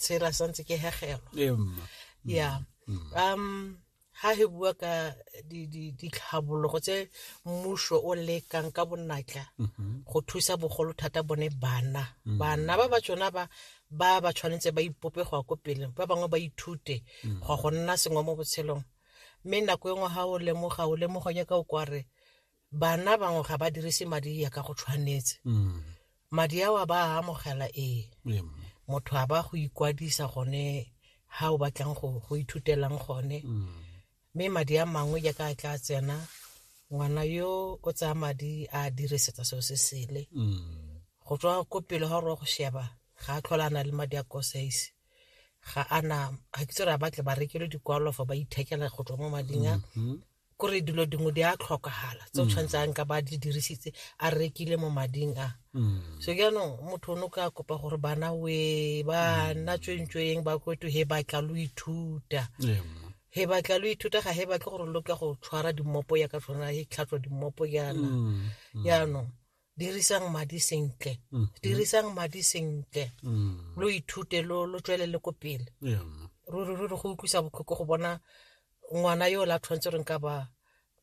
tshela sa ntse ke hegelwa ee, mma mm, ya mm. um ha he bua ka ditlhabologo tse mmuso o lekang ka bonatla mm-hmm. go thusa bogolo thata bone bana mm. bana ba ba tsona ba ba ba tshwanetse ba ipope go ya ko pele ba bangwe ba ithute go go nna sengwe mo botshelong mme nako e nngwe ga o lemoga o lemoga nyaka o kware bana bangwe ga ba dirise madi ya ka go tshwanetse mm. madi ao a ba a amogela ee motho a ba go ikwadisa gone ga o batlang go ithutelang gone mm. mme madi a mangwe jaaka a tla tsena ngwana yo o tsaya madi a dirisetsa seo se sele mm. go tswa ko pele ga gore go sheba ga a tlhola a na le madi a kosaise ga ana ga ke tsere a batle ba rekelwe dikwalo fa ba ithekela go tswa mo mading a mm-hmm. kore dilo dingwe di a tlhokagala tse o tshwanetse a nka ba di dirisitse a rekile mo mading a so jaanong motho o ne o ka kopa gore bana we bana tswentsweng ba kweto he batla lo ithuta Ee, mma. he batla lo ithuta ga he batle gore lo ka go tshwara dimmopo ya ka tshwana he tlhatswa dimmopo jaana jaanong dirisang madi sentle Mhm. dirisang madi sentle Mm. lo ithute lo lo tswelele ko pele Yeah. ruri ruri go utlwisa botlhoko go bona ngwana yo o la tshwanetse reng ka ba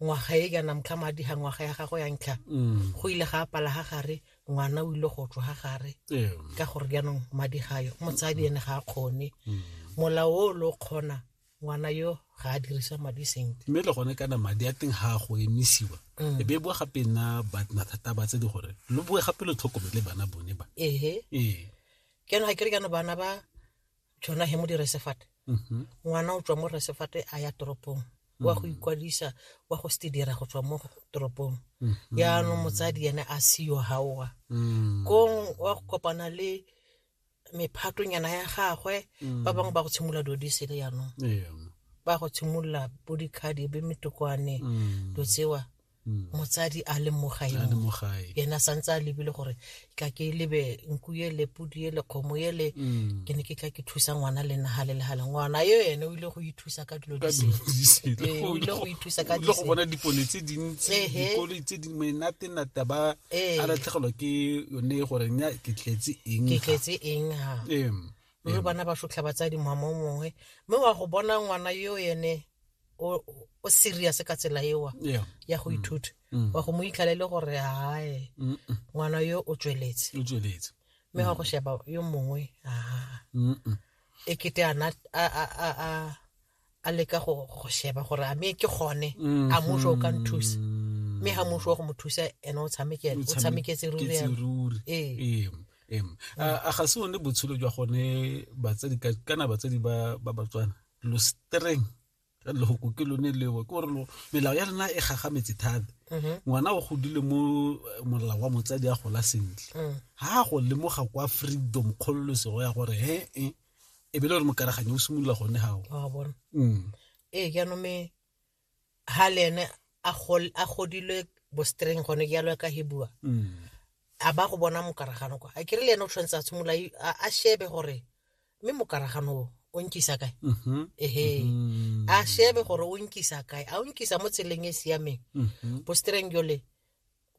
ngwaga e kana motlha madi ga ngwaga ya gago ya ntlha Mm. go ile ga apala ga gare ngwana o ile go tswa ga gare Yeah. ka gore jaanong madi gayo motsadi ene ga a kgone Mm. molao o lo kgona ngwana yo ga a dirisa madi sentle mme le gone kana madi a teng ga a go emisiwa mm. e be bua gape nna batna thata ba tse di gore lo bue gape lo tlhokomele bana bone ba ehe ee ke no ga ke re kana bana ba tshwana he mo dire sefate mm-hmm. ngwana o tswa mo re sefate a ya toropong wa go mm. ikwadisa wa go se dira go tswa mo toropong mm-hmm. yaanong motsadi ene a seyo gaowa mm. kong wa go kopana le mephatonyana ya gagwe Mm. ba bangwe ba go tshimolola dilo di sele yanong Ee. ba go tshimolola bo dikhadi be metokwane Mm. dilo tsewa Mm. motsadi a le mo a le gaeno mo gae yena santse a lebile gore ka ke lebe nku ye le pudi ye le kgomo ye le Mm. ke ne ke tla ke thusa ngwana le naga le legale ngwana yo ene o ile go ithusa ka dilo ka di dilo sele di sele. Ee, o ile go ithusa ka O ile go disele. bona dipone tse dintsi Ehe. dikoloi tse di menatenata ba Ee. a latlhegelwa ke yone e goreng ya ke tletse eng ke tletse eng ha Em, mme bana ba sotlha batsadi mama o mongwe mme wa go bona ngwana yo ene o o serious ka tsela ewa yeah. ya go ithuta wa go mo itlhale le gore hae Mm, mm, ngwana yo o tsweletse o tsweletse mme wa go sheba yo mongwe aa Mm, mm. e kete ana a- a- a- a- a leka go go sheba gore a me ke gone a muso o ka nthusa mme ga muso wa go mo thusa ene o tshamekele o tshameketse ruri Ketse yana. ruri. Ee. Em, em. a a ga se one botshelo jwa gone batsadi ka- kana batsadi ba ba batswana lo streng ka lehoko ke lone leo ke gore lo- melao ya lena e gagametse thata Mhm. ngwana o godile mo eh, molao wa motsadi a gola sentle Mm. ga a go lemoga kwa freedom kgololosego ya gore he e e be le gore mokaraganyo o simolola gone gao wa bona mm. ee ke anome ha le ene a gol- a godilwe bostreng gone ke yalo ka hebua Mm. a ba go bona mokaragano kwa a kere le ene o tshwanetse a tshimolola i- a a shebe gore mme mokaragano o o nkisa kae Mhm. ehe Mm. a shebe gore o nkisa kae a o nkisa mo tseleng e e siameng Mhm. bostreng jole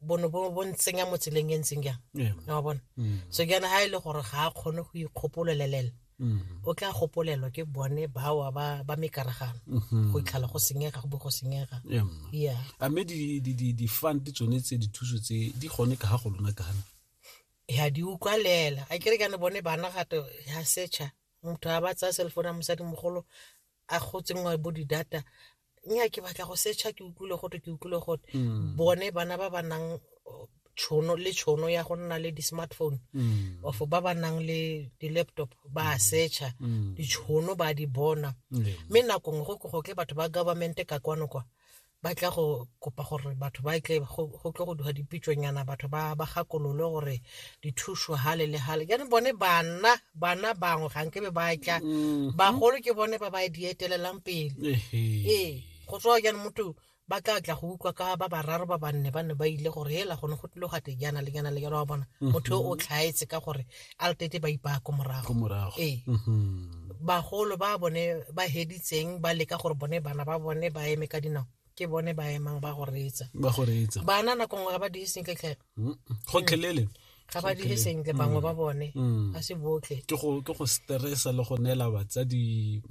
bono bo bo ntsenya mo tseleng e ntseng jang Ee. na wa bona Mm. so ke yana ga e le gore ga a kgone go ikgopololelela Mm. o tla gopolelwa ke bone bawa ba ba mekaragano Mhm. go itlhala go senyega go bo go senyega Ee. yeah a mme di- di- di- di-fund tsone tse dithuso tse di gone ka ga go lona kana ya di utlwalela a kere kane bone bana gato ya setšha motho a ba tsaya cellphone ya mosadimogolo a gotsengwa bo di-data nya ke batla go secha ke utlwile gote ke utlwile gote mm. bone bana ba ba nang tshono le tshono ya go nna le di-smartphone mm. of ba ba nang le di-laptop ba mm. secha mm. ditshono ba di bona mme mm. nakong go go tle batho ba government ka kwano kwa ba tla go kopa gore batho ba tle go tlo go duga dipitsonyana batho ba ba gakololo gore dithuso hale le hale jaanong bone bana bana bangwe ga nkebe ba tla mm-hmm. bagolo ke bone ba ba e dietelelang pele ee go tswa jaanong motho ba tla tla go utlwa ka ba bararo ba banne ba ne ba ile gore hela gone go tlile gate jaana le jaana le jaana wa bona mm-hmm. motho o tlhaetse ka gore a letete ba ipaya ko morago ee mm-hmm. bagolo ba bone ba heditseng ba leka gore bone bana ba bone ba eme ka dinao ke bone ba emang ba go reetsa bana nako nngwe ga ba diiseng ketlhela gotlhelele ga ba dire sentle bangwe ba mm. bone mm. ga se botlhe ke go ke go stressa le go neela batsadi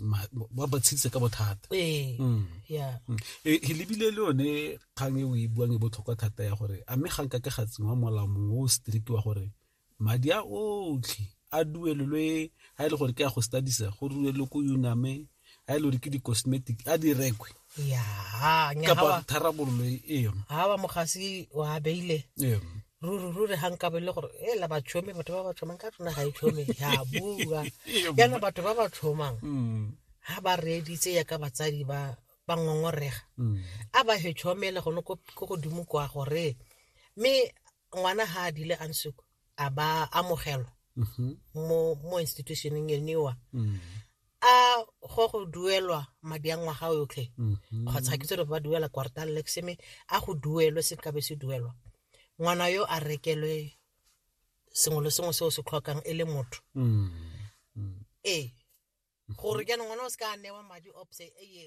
ba ba tshitse ka bothata ee mm. ya e, e lebile le yone kgang e o e buang e botlhokwa thata ya gore a mme ga nka ke ga tsengwa molao mongwe o strict wa gore madi a otlhe a duelelwe a e le gore ke a go stadisa go duelelwe ko uname a e le gore ke di-cosmetic a di rekwe kapa tharabololo eo ga ba mogasi wa beile ruri ruri ga nka bele gore e la batšhomi batho ba ba tšhomang ka tsona ga e tšhomi ya bua yana batho ba ba tšhomang ga mm. ba reeditse ya ka batsadi ba ba ngongorega mm. a ba he tšhomele gone ko godimo kwa gore mme ngwana ha a dile a nsuku a ba amogelwa Mhm. mo mo institutioneng eniwa Mm. a go go duelwa madi a ngwaga yotlhe Mhm. kgotsa ke tsere ba duela quartal lexeme a go duelwe se nkabe se duelwa ngwana yo a rekelwe sengwe le sengwe se o se tlhokang e le motho Mm. ee gore jaanong ngwana o se ka a newa madi opse eye